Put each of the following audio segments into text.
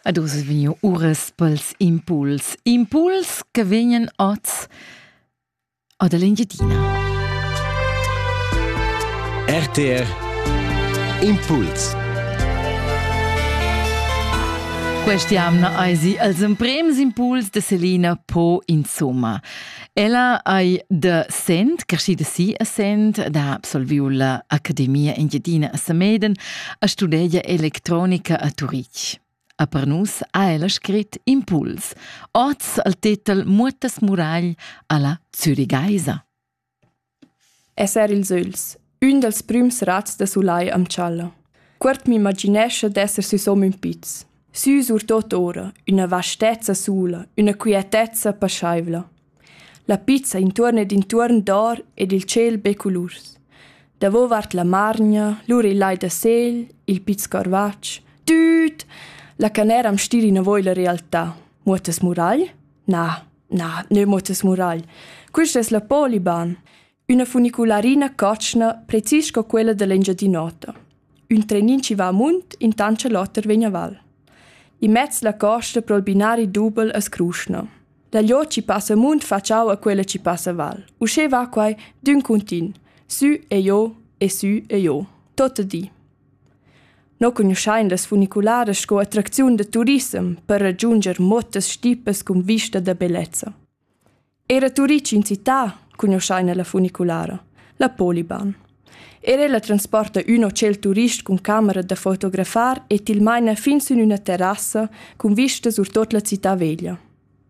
Ad uss è vegniu uras pels impuls. Impuls che vegnan oz ad l'Engiadina. RTR Impuls Questa jamna eisi als emprems impuls de Selina po insomma. Ella ei da Sent, creschida si a Sent, ed ha absolviu la Academia Engiadina a Sameden a studegiar electronica a Turitg. A per nus ha ella scrit Impuls, oz al tetel Muotas Muragl alla Zürigeisa. Esser ils ögls, ün dals prüms razs da sulai am tschalla. Cuort m'imaginescha d'esser süsom ün piz. Sü surtot ora, üna vastezza sula, üna quietezza paschaivla. La pizza intuorn ed intuorn dor ed il tschel be culurs. Davovart la margna, lura il lai da sel, il piz corvatsch, tüt! La canera am stira inavo illa realtà. Muottas muragl? Na, Na, neu motas moral. Quist es la Poliban, üna funicularina cotschna precis sco quella dell'Engiadin'Ota. Ün trenin ci va amunt, intant che l'oter vegn a val. In mezz la costa pro il binari dubel a Scruschna. Da lò ci passa amunt facciau a quella ci passa val. Usché va quai d'ün cuntin, sü e jo e sü e jo, tot di. No cugnuschain las funicularas sco attracziun da turissem per ragiunger motas stipas cun vista da bellezza. Era turists in città cugnuschaina la funiculara, la Poliban. Era la transporta ün hotel turist cun camera da fotografar e til maina fin sün üna terrassa cun vista sur tot la città veglia.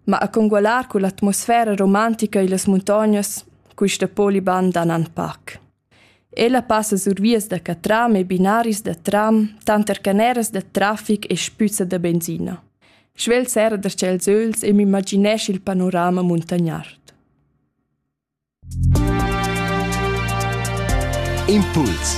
Ma a congualar con l'atmosfera romantica e las muntognas, quista Poliban dan an pac. Ella passa sur vias da catram e binaris da tram, tanter caneras da trafic e spüzza da benzina. Svelt serra da tschels öls e m'imaginesch il panorama muntagnard. Impuls